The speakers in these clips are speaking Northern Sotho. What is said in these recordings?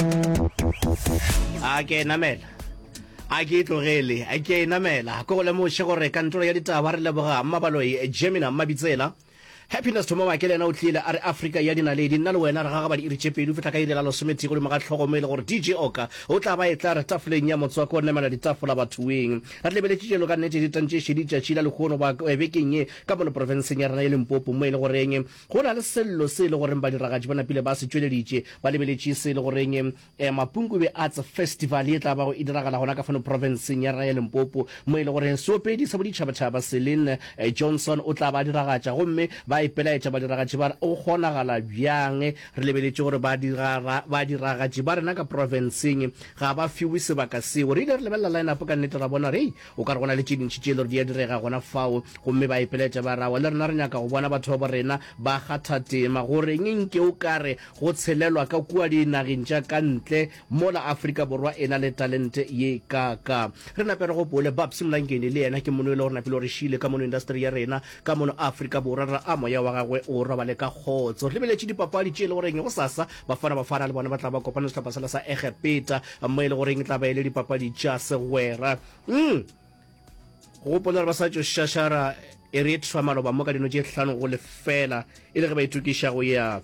a ke namela a ke tlogele a ke namela ko go lemoše gore kantoro ya ditaba re leboga mmabaloi jemina mmabitsela happiness thoma wa ke le yena o tlile a re afrika ya dinaledi nna le wena re gagabadi iri tše pedi fihla ka irela lesomethii godimo ga tlhogomo e le gore dj oka o tla ba e tla re tafoleng ya motswako o namela ditafola bathoeng re lebeletše jelo ka nnete ditantšešedi tšatši la lekgono ba bekeng ye ka mono porofenseng ya rena ye lempopo mo e le goreng Go na le sello se e le goreng badiragatši ba napile ba se tšweleditše. Ba lebeletše se e le goreng Mapunkube Arts Festival e tla bago e diragala gona ka fano profenseng ya rena ya Limpopo, mo e le goreng seopedi sa boditšhabatšhaba Celine Johnson o tla ba diragatša. Gomme ba ipelaetša badiragatši ba re, Go kgonagala bjang? Re lebeletše gore badiragatši ba rena ka profenseng ga ba fiwe sebaka seo. Re ile re lebelela line-up ka nnete ra bona re, Hei, O ka re go na le tše dintši tše e le gore di a direga gona fao, gomme ba ipeletša ba re, Awa, le rena re nyaka go bona batho ba bo rena ba kgatha tema. Go reng nke o ka re go tshelelwa ka kua dinageng tša ka ntle mola Afrika Borwa e na le talente ye kaakaa? Re nape re gopole Babs Mlangeni, le yena ke mono e le gore napile gore šile ka mono industry ya rena Ka mono Afrika Borwa re a moya wa gagwe o robale ka kgotso. Lebeletše dipapadi tše e le goreng gosasa Bafana Bafana le bona ba tla ba kopana le sehlopha sela sa Egepeta mo e le goreng e tla ba e le dipapadi tša segwera. Umm gopola gore ba sa tšo šašara Eritrea maloba mo ka dino tše hlano go lefela e le ge ba itokiša go ya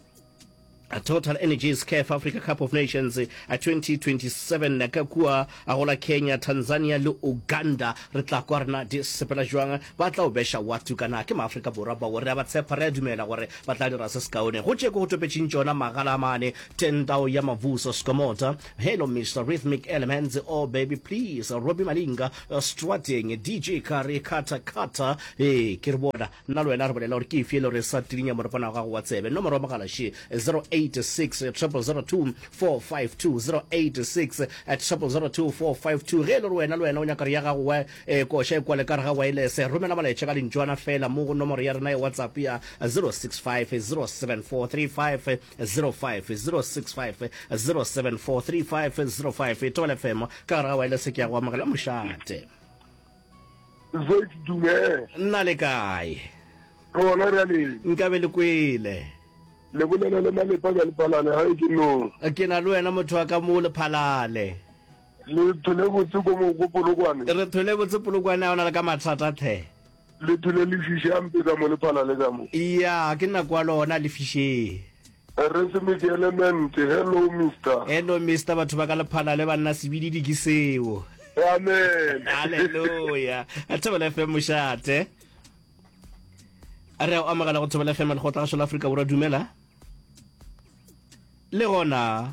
Total Energies CAF Africa Cup of Nations 2027 eh, ka kua a gola Kenya, Tanzania le Uganda. Re tla kwa rena di sepela jwang ba tla o besha watu kana ke maafrika borwa bao re a ba tshepa re a dumela gore ba tla dira se sekaone go tšeko go topetšeng tšona magala mane tendao ya mavuso skomota hello mr rhythmic elements oh baby please robi malinga strateng dj kare kata kata e ke re bona Nna le wena re bolela gore ke efe e le gore e sa tirinya morepana wa gago wa tsebe. Nomoro ya mogala še 086 300 452, 086 300 452. Ge e le gore wena le wena o nyaka re ya gago wa e koša e kwale ka re ga waelese, romela molaetša ka lentšwana fela mo go nomoro ya rena ya WhatsApp ya 065 074 3505, 065 074 3505. Thobela FM, ka gare ga waelese ke ya go amogela mošate. Zoe Dumela. Nna le kae? Re gona bjale. Nkabe le kwele. Le bolela le Malepa bja Lephalale ga e ke no. Ke na le wena motho wa ka mo Lephalale. Le thole botse ko mo ko Polokwane. Re thole botse Polokwane a o na le ka mathata the. Le thole lefiši a mpetsa mo Lephalale ka mo. Iya ke nna kwa lona lefisheng. Re se me dielemente. Hello Mister. Hello Mister batho ba ka lephala le banna sebididi ke seo. Amen. Hallelujah. A thobela FM mošate. A re o amogela go thobela FM le go tla go South Africa borwa dumela. Le gona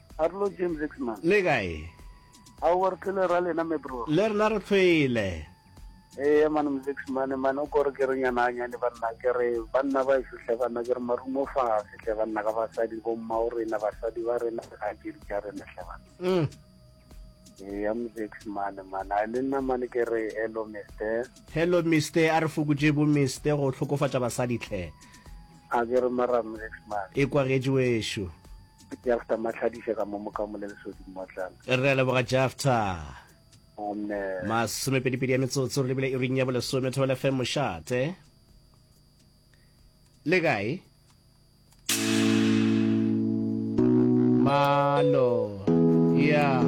Arlo James Zixman. Le kae? Aowa re tlile ra lena me bro. Le rena re tlile. Eya man Mzixman man o kore ke re nyana anyane banna ke re banna ba eso hle banna ke re marumo fa se hle banna ka basadi bo mma o rena basadi ba rena ga ke di tša rena hle banna. Mm. Eya Mzixman man a le nna man ke re hello Mr. Hello Mr a re fokotše bo Mr go hlokofatša basadi hle. A ke re mara Mzixman. E kwagetše wešo. Jafta Matlhadiša ka mo mokamo le lesodi mmotlana. Re a leboga Jafta. Amen. Masomepedipedi ya metsotso re lebile iring ya bolesome thobela fm mošate. Le kae? Malo. Yeah.